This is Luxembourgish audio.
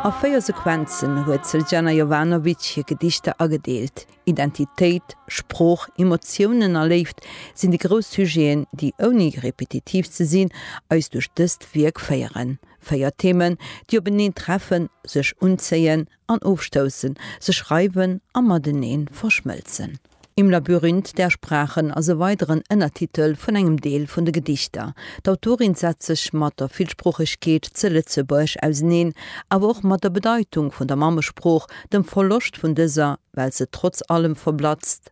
A véier Sequenzen huet d'Sljana Jovanovic hir Gedichter agedeelt. Identitéit, Sprooch, Emotiounen a Léift sinn déi grouss Sujeten, déi, ouni repetitiv ze sinn, eis duerch dëst Wierk féieren. Véier Themen, déi openeen treffen, sech unzéien an ofstoussen, sech reiwen a mateneen verschmëlzen. Im Labyrinth der Sprachen ass e weideren Ënnertitel vun engem Deel vun de Gedichter. D'Autorin setzt sech mat der Villsproochegkeet ze Lëtzebuerg auseneen, awer och mat der Bedeitung vun der Mammesprooch, dem Verloscht vun dëser, well se trotz allem verblatzt,